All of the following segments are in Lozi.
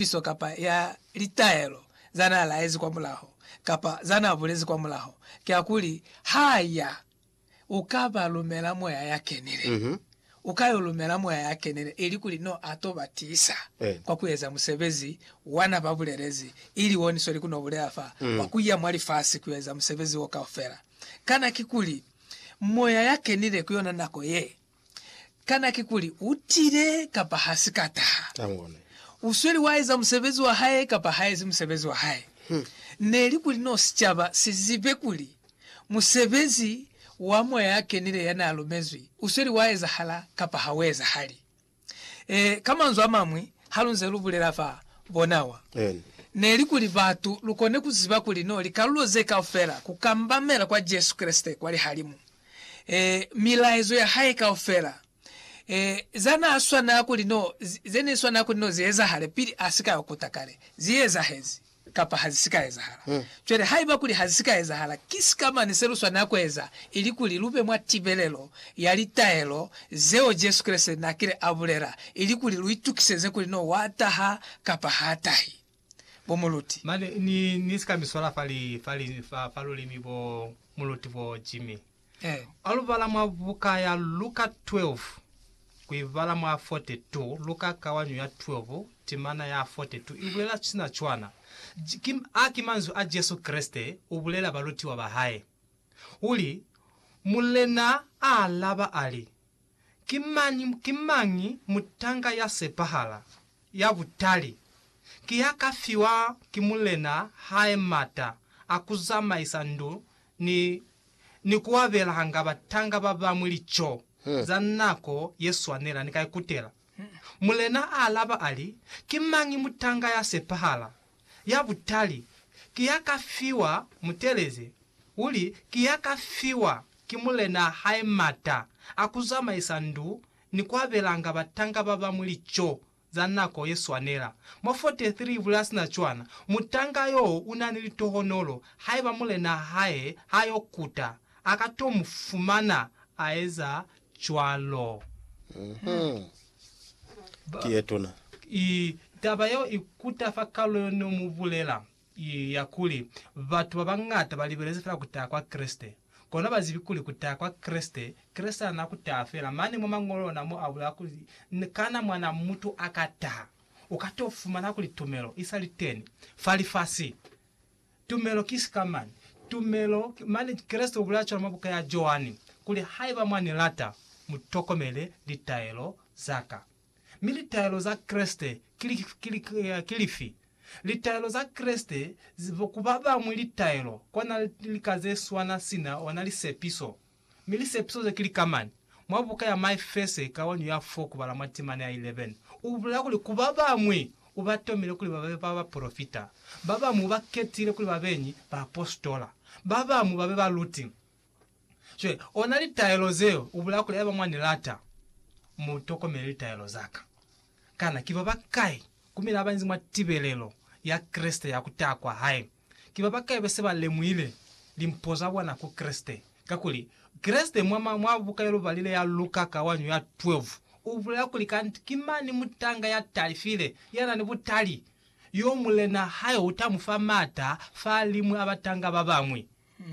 lipiso kapa ya litaelo za n'a laezi kwa mulaho kapa za n'a bulezi kwa mulaho, kiakuli ha ya, u ka ba lumela Moya ya Kenile. U ka y'o lumela Moya ya Kenile, ilikuli n'o a t'o ba tiisa kwa ku eza musebezi wa n'a ba bulelezi, ili wo ni sweli ku n'o bulela fa, wa ku ya mwa lifasi ku yo eza musebezi w'o kaufela. Kana kikuli Moya ya Kenile ku yona nako ye? Kana kikuli u tile kapa ha si ka taha? U sweli wa eza musebezi wa hae kapa ha ezi musebezi wa hae? Ne li kuli no sicaba si zibe kuli musebezi wa Moya ya Kenile ya n'a lumezwi u sweli wa ezahala kapa ha u ezahali. Ee, ka manzwi a mañwi, ha lu nze lu bulela fa bona wa, ne li kuli batu lu kone ku ziba kuli no likalulo ze kaufela ku kambamela kwa Jesu Kreste kwa lihalimu. e, milaezo ya hae kaufela, e, za na swanela kuli no, ze ne swanela kuli no zi ezahale pili a si ka yo kuta kale, zi ezahezi kapa ha zi si ka ezahala. Mm. Cwale haiba kuli ha zi si ka ezahala, ki sika mane se lu swanela ku eza, ili kuli lu be mwa tibelelo ya litaelo zeo Jesu Kreste n'a kile a bulela, ili kuli lu itukiseze kuli no wa taha kapa h'a tahi. bo muluti. Mane ni, ni si ka mi swala fa li, fa li, fa, fa lulimi bo muluti bo, Jimmy. Eh. A lu bala mwa buka ya Luka 12, ku i bala mwa 42, Luka kawanyo ya 12, timana ya 42, i bulela sina cwana. J, ki, a ki manzwi a Jesu Kreste, u bulela balutiwa ba hae. U li, Mulena a alaba a li, Ki mañi, ki mañi mutanga ya sepahala, ya butali, ki ya ka fiwa ki mulena hae mata a ku zamaisa ndu ni, ni ku abelanga batanga ba bañwi lico za nako ye swanela? Ni ka ikutela. Mulena a alaba a li, Ki mañi mutanga ya sepahala, ya butali ki ya ka fiwa mutelezi, uli ki ya ka fiwa ki mulenaa hae mata a ku zamaisa ndu ni ku abelanga batanga ba bañwi lico za nako ye swanela. Mwa 43 ibula ya sina cwana, mutanga yo u na ni litohonolo, haiba mulenaa hae ha yo kuta, a ka to mu fumana a eza cwalo. Ki ye tuna. I, taba yeo i kuta fa kalu yo ne mu bulela, i, ya kuli, Batu ba bañata ba libelezi fela ku taha kwa Kreste. Kono ha ba zibi kuli ku taha kwa Kreste, Kreste ana ku taha fela. Mane mwa Mañolo ona mo a bulela kuli, Kana Mwanaa Mutu a ka taha, u ka t'o fumana kuli tumelo i sa li teni fa lifasi? Tumelo ki sikamani. Tumelo, mane Kreste ubulaya cwalo mwa buka ya Joani, kuli, Haiba mwa ni lata, mu tokomele litaelo za ka. Mi litaelo za Kreste ki lifi? Litaelo za Kreste, ku ba bañwi litaelo, kona lika ze swana sina ona lisepiso. Mi lisepiso ze ki likamani. Mwa buka ya Mike Fesse, kawanyu ya 4 kubala mwa timana ya 11, u bulela kuli, Ku ba bañwi u ba tomile kuli ba be bapolofita, ba bañwi u ba ketile kuli ba beñi baapositola, ba bañwi ba be baluti. Cwale, ona litaelo zeo, u bulela kuli, Haiba mwa ni lata, mu tokomele litaelo za ka. Kana ki ba bakai ku mina ba inzi mwa tibelelo ya Kreste ya ku taha kwa hae? ki ba ba kaibe se ba lemuhile limpo za bona ku Kreste. Kakuli, Kreste mwa, mwa, mwa buka ye lubalile ya Luka ka wañu ya 12, u bulela kuli kanti ki mani mutanga ya talifile, ya na ni butali, yo Mulena hae u ta mu fa maata fa liñwi a batanga ba bañwi.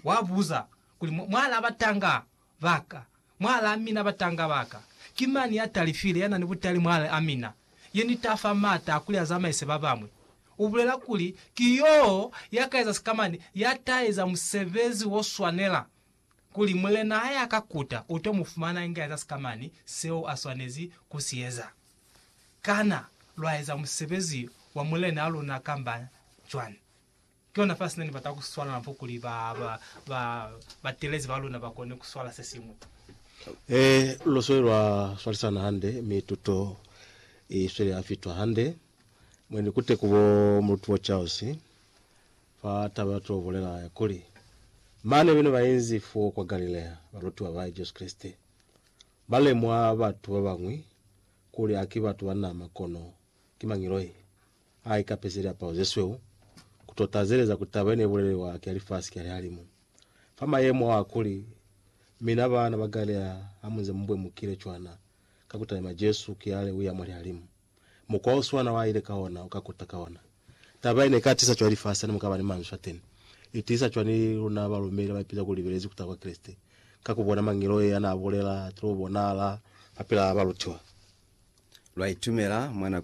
Wa buza kuli, Mwa, mwa laba tanga Baka, mwala a mina, batanga baka. Ki mani ya talifile, ya na ni butali mwale a mina, ye ni ta fa mata a kuli a zamaise ba bamwi. U bulela kuli, Ki yo ya ka eza sikamani, ya ta eza musebezi wo swanela, kuli Mulena ha ya ka kuta, u to mu fumana inge a eza sikamani seo a swanezi ku si eza. Kana lwa eza musebezi wa Mulenaa luna kamba cwani? Kihona fa sina ni bata ku swala napo kuli ba ba ba telezi ba luna ba kone ku swala se singwe. He lu sweli lwa swalisana hande, mi tuto i sweli ya fitwa hande. Mwe ni kute ku bo Mulutubwa Charles fa taba ya to bulela ya kuli, Mane bene ba inzi fo kwa Galilea, balutiwa ba Jesu Kreste, ba lemwa batu ba bañwi kuli ha ki batu ba nama kono ki mangiloi. Ha ikapezi liapalo zesweu, kuto tazeleza kuli taba yene ibulelelwa ki ya lifasi ki ya lihalimu. Fa mayemo aa kuli, mina baana ba Galilea hamunze mubwemukile cwana ka kutalima Jesu kiale uya mwa lihalimu, mukwa oswana waaile ka ona uka kuta ka ona. Taba yene ika tiisa cwani lifasi hane mukaba ni manzwi ateni? Itiisa cwani luna balumeli abaipeza kuli libelezi kuta kwa Kreste? Ka kubona mangeloi anaabulela, atilo bonahala fapilaa balutiwa. Lwaitumela mwa nako ye.